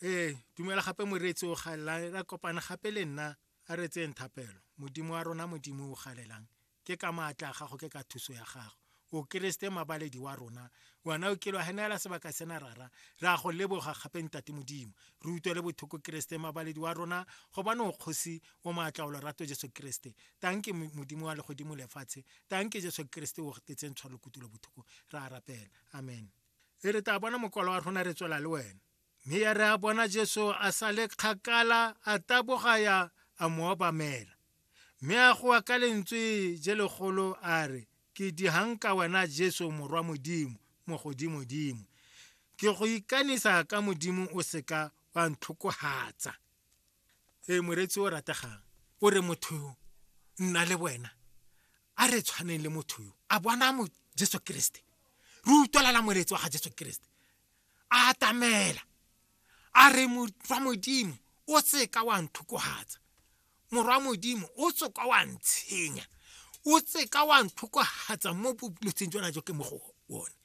ee dumela gape moreetsi o galela ra kopana gape le nna a re tseyeng thapelo modimo wa rona modimo o galelang ke ka maatla a gago ke ka thuso ya gago o keresete mabaledi wa rona wena o kelo henela sebaka sena rara ra go leboga gape ntate modimo re utlwe le bothoko keresete mabaledi wa rona gobane o kgosi o maatla o lorato jesu keresete tanke modimo wa legodimo lefatshe tanke jesu keresete o tetseng tshwalo kutulo bothoko ra rapela amen e re tla bona mokwalo wa rona re tswela le wena mme ya re a bona jesu a sa le kgakala a taboga ya a mo obamela mme a goa ka lentswe je legolo a re ke dihanka wena jesu morwa modimo mo godimodimo ke go ikanisa ka modimo o seka wa ntlhokohatsa ee moreetsi o rategang o re motho yo nna le wena a re tshwaneng le motho yo a bona mo jesu keresete re utlwelela moreetsi wa ga jesu keresete a atamela a re morwa modimo o seka wa nthukwagatsa morwa modimo o tsoka wa ntshenya o seka wa nthukwagatsa mo boletseng jona jo ke mo go one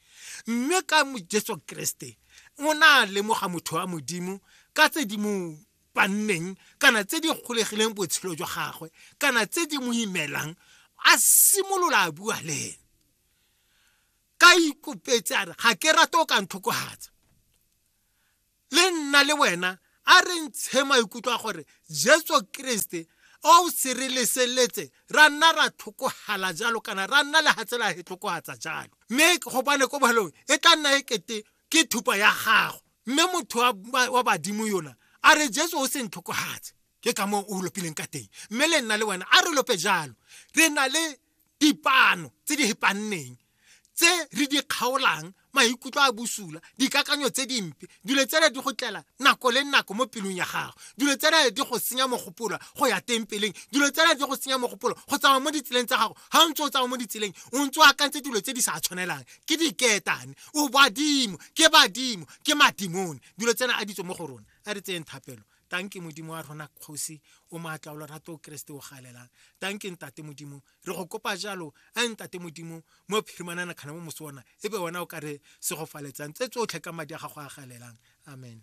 mme ka Jesu Kriste o na lemoga motho wa modimo ka tse di mo banneng kana tse di golegileng botshelo jwa gagwe kana tse di mo imelang a simolola a bua le ene ka ikopetse a re ga ke rate o ka ntlhokogatsa le nna le wena a re ntshe maikutlo a gore jesu kriste o o se re leseletse ra nna ra tlhokogala jalo kana ra nna le gatsela e tlhokogatsa jalo mme gobane ko bohelong e tla nna e kete ke thupa ya gago mme motho wa badimo yona a re jesu o se ntlhokogatse ke ka moo o lopileng ka teng mme le nna le wena a re lope jalo re na le dipano tse di hepanneng tse re di kgaolang maikutlo a bosula dikakanyo tse dimpe dilo tsele di go tlela nako le nako mo pelong ya gago dilo tsele di go senya mogopolo go ya teng peleng dilo tsele di go senya mogopolo go tsamaya mo ditseleng tsa gago ga o ntse o tsamaya mo ditseleng o ntse o akantse dilo tse di sa tshwanelang ke diketane o badimo ke badimo ke madimone dilo tsena a ditso mo go rona a re tseyeng thapelo tanke modimo wa rona kgosi o maatla o lorato o keresete o galelang tanke ntate modimo re go kopa jalo a ntate modimo mo phirimanana kgana mo moso ona e be wena o ka re se go faletsang tse tsotlhe ka madi a gago a galelang amen